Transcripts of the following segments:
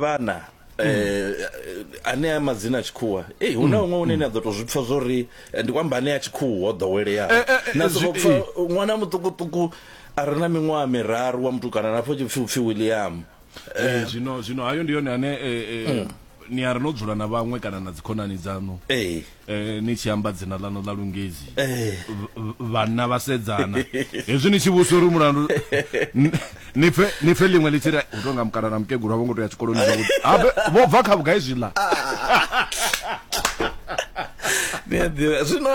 vhana eh ane a madzina a tshikhuwa eh hu na huṅwe une ni a ḓo tou zwi pfa zwo ri eh, ndi kwamba ane a tshikhuwa o ḓoweleaho Eh, eh, eh, na zwi- sokou pfa eh. ṅwana muṱukuṱuku a re na miṅwaha miraru wa mutukana na pfo tshipfi upfi william Eh, zwino zwino hayo ndi yone ane eh, eh, ni a ri no dzula na vhaṅwe kana na dzikhonani dzaṋu ee Eh, ni tshi amba dzina ḽaṋu ḽa lungezi eh. vhanna vha sedzana hezwi ni tshi vhusa uri mulandu ni pfe ni pfe ḽiṅwe ḽi tshi ri u tonga mukala na mukegulu a vho ngo to ya tshikoloni zwavhuḓi vho bva kha vhugai zwiḽa zwino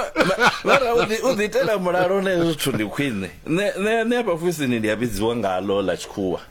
vhara u ḓiitela mulalo na hezwo zwithu ndi khwine nṋe hafha fusini ndi a vhidziwa ngalo ḽa tshikhuwa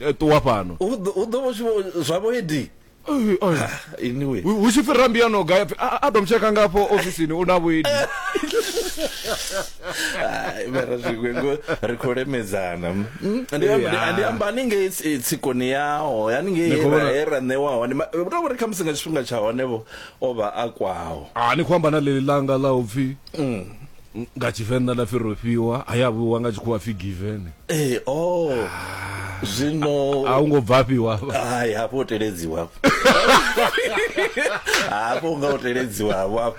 eh, ṱuwa fhano hu ḓo- hu ḓo vho tshi vho- zwa vho edi Ai, ai. anyway Hu- hu tshi fhira mbiyano gai apfi, "Ah, ah, dom tsheka ngafho ofisini u na vhuidi Ai, mara zwiṅwe ngo ri khou lemedzana Mm, ndi amba- ndi- Yeah. ndi amba haningei tsi- tsikoni yaho haningei Ni khou he ra- vhona- he ra ṋewa hone Ma- u tou vhori khamusi nga tshifhinga tsha hone vho o vha a kwaho Ah, ni khou amba na ḽeḽi ḽanga ḽa u pfi nga tshivenḓa nda pfi rofhiwa ha ya vhuwa nga tshikhuwa pfi given ee o oh. ah. zwino a u ngo bvafhiwa hai hafho u teledziwa hafho u nga u teledziwa hafho hafho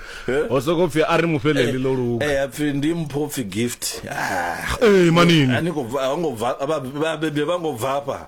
ho soko pfi a ri mu fheleli ḽo luga ee a pfi ndi mpho pfi gift ah. ee manini a ni ngo bva a ngo bva vhabebi vha ngo bvafha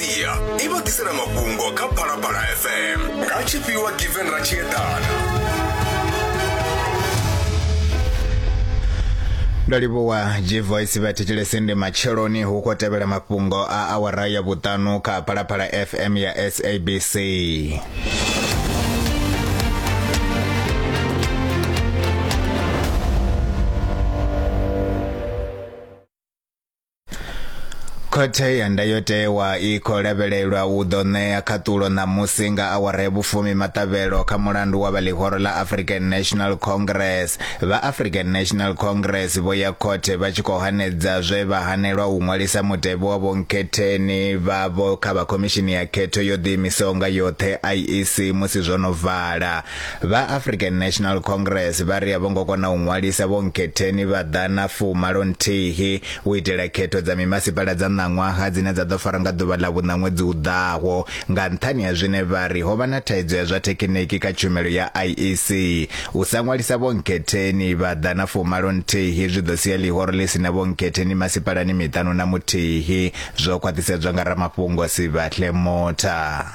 media i vha ḓisela mafhungo kha phalaphala fm nga tshifhiwa given ra tshi eḓana ndo livhuwa gvoice vha thetshelese ndi matsheloni hu khou tevhela mafhungo a awara ya vhuṱanu kha phalaphala fm ya sabc khothe ya ndayotewa i khou lavhelelwa u ḓo ṋea khaṱulo ṋamusi nga awara ya vhufumi maṱavhelo kha mulandu wa vha ḽihoro ḽa african national congress vha african national congress vho ya khothe vha tshi khou hanedza zwe vha hanelwa u ṅwalisa mutevhe wa vhonkhetheni vhavho kha vha khomishini ya khetho yo ḓiimisaho nga yoṱhe iec musi zwo no vala Vha African National Congress vha ri a vho ngo kona u ṅwalisa vho nkhetheni vha ḓa na fumalo nthihi u itela khetho dza mimasipala dza ṋaṅwaha dzine dza ḓo fara nga ḓuvha ḽa vhuṋa ṅwedzi u ḓaho nga nṱhani ha zwine vha ri ho vha na thaidzo ya zwa thekhiniki kha tshumelo ya IEC. U sa ṅwalisa vho nkhetheni vha ḓa na fumalo nthihi zwi ḓo sia ḽihoro ḽi si na vho nkhetheni masipalani miṱanu na muthihi, zwo khwaṱhisedzwa nga ramafhungo Sibahle Motha.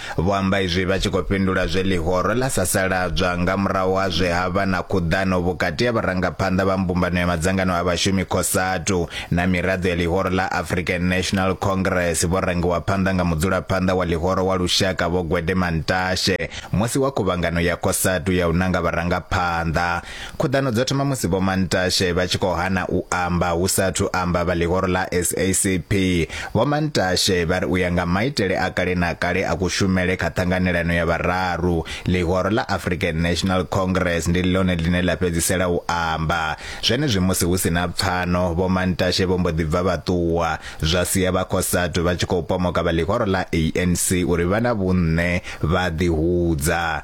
Vho amba izwi vha tshi khou fhindula zwe ḽihoro ḽa sasaladzwa nga murahu ha zwe ha vha na khuḓano vhukati ha vharangaphanḓa vha mbumbano ya madzangano a vhashumi Cosatu na miraḓo ya ḽihoro ḽa African National Congress vho rangiwa phanḓa nga mudzulaphanḓa wa ḽihoro wa lushaka Vho Gwede Mantashe musi wa khuvhangano ya Cosatu ya u nanga vharangaphanḓa Khuḓano dzo thoma musi Vho Mantashe vha tshi khou hana u amba hu sa athu amba vha ḽihoro ḽa SACP. Vho Mantashe vha ri u ya nga maitele a kale na kale a kushumele kha ṱhanganelano ya vhararu, ḽihoro ḽa African National Congress ndi ḽone ḽine ḽa fhedzisela u amba. Zwenezwi musi hu si na pfano, Vho Mantashe vho mbo ḓi bva vha ṱuwa, zwa sia vha Cosatu vha tshi khou pomoka vha ḽihoro ḽa ANC uri vha na vhunṋe vha ḓihudza.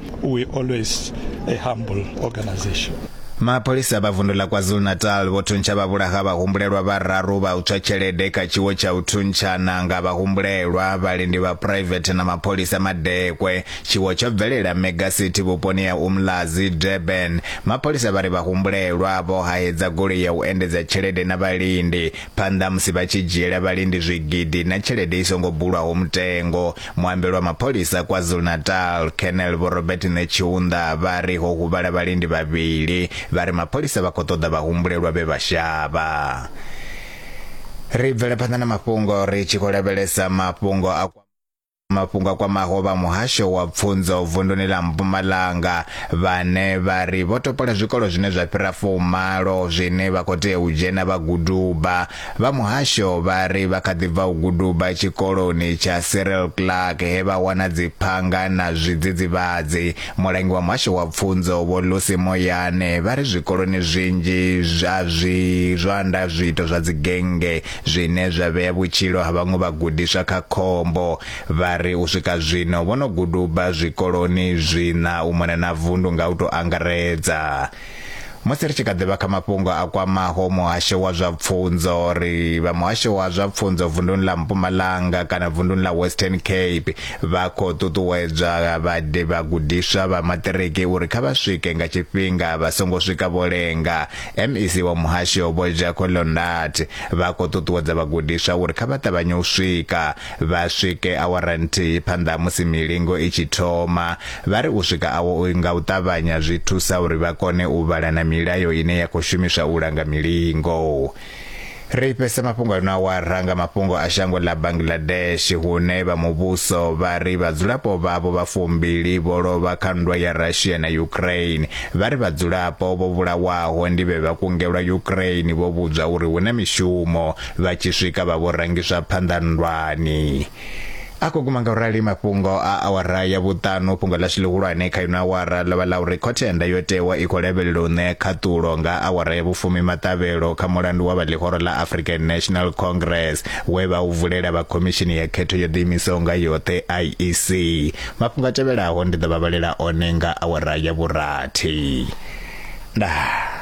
we always a humble organization. Mapholisa vha vundu ḽa KwaZulu-Natal vho thuntsha vhavhulaha vhahumbulelwa vhararu vha u tswa tshelede kha tshiwo tsha u thuntshana nga vhahumbulelwa, vhalindi vha phuraivethe na mapholisa madekwe. Tshiwo tsho bvelela Mega City vhuponi ha Umlazi, Durban. Mapholisa vha ri vhahumbulelwa vho haedza goloi ya u endedza tshelede na vhalindi phanḓa musi vha tshi dzhiela vhalindi zwigidi na tshelede i songo bulwaho mutengo. Muambeli wa mapholisa KwaZulu-Natal, Colonel Vho Robert Netshiunda vha ri ho huvhala vhalindi vhavhili vha ri mapholisa vha khou ṱoḓa vhahumbulelwa vhe vha shavha. Ri bvele phanḓa na mafhungo ri tshi khou lavhelesa mafhungo a mafhungo a kwamaho vha muhasho wa pfunzo vunduni ḽa mpumalanga vhane vha ri vho topola zwikolo zwine zwa fhira fumalo zwine vha khou tea u dzhena vha guduba Vha muhasho vha ri vha kha ḓi bva u guduba tshikoloni tsha Cyril Clark he vha wana dziphanga na zwidzidzivhadzi. Mulangi wa muhasho wa pfunzo Vho Lucy Moyane vha ri zwikoloni zwinzhi zwa zwi zwanda zwiito zwa dzigennge zwine zwa vhea vhutshilo ha vhaṅwe vhagudiswa kha khombo. Vha ri u swika zwino vho no guduba zwikoloni zwiṋa u mona na vundu nga u tou angaredza. Musi ri tshi kha ḓi vha kha mafhungo a kwamaho muhasho wa zwa pfunzo, ri vha muhasho wa zwa pfunzo vunduni ḽa Mpumalanga kana vunduni ḽa Western Cape vha khou ṱuṱuwedzwa vhade vhagudiswa vha maṱiriki uri kha vha swike nga tshifhinga vha songo swika vho lenga. MEC wa muhasho Vho Jacko Londat vha khou ṱuṱuwedza vhagudiswa uri kha vha ṱavhanye u swika Vha swike awara nthihi phanḓa ha musi milingo i tshi thoma. Vha ri u swika awo u nga u ṱavhanya zwi thusa uri vha kone u vhala na milayo ine ya khou shumiswa u langa milingo. Ri fhesa mafhungo ano awara nga mafhungo a shango ḽa Bangladesh hune vha muvhuso vha ri vhadzulapo vhavho vha fumbili vho lovha kha nndwa ya Russia na Ukraine. Vha ri vhadzulapo vho vhulawaho ndi vhe vha kungelwa Ukraine vho vhudzwa uri hu na mishumo. vha tshi swika vha vho rangiswa phanḓa nndwani a khou guma nga urali mafhungo a awara ya vhuṱanu fhungo ḽashu ḽihulwane kha ino awara ḽo vha ḽa uri khothe ya ndayotewa i khou lavhelela u ṋea khaṱulo nga awara ya vhufumi maṱavhelo kha mulandu wa vha ḽihoro ḽa african national congress we vha u vulela vha khomishini ya khetho yo ḓiimisaho nga yoṱhe iec mafhungo a tevhelaho ndi ḓo vha vhalela one nga awara ya vhurathi ndaa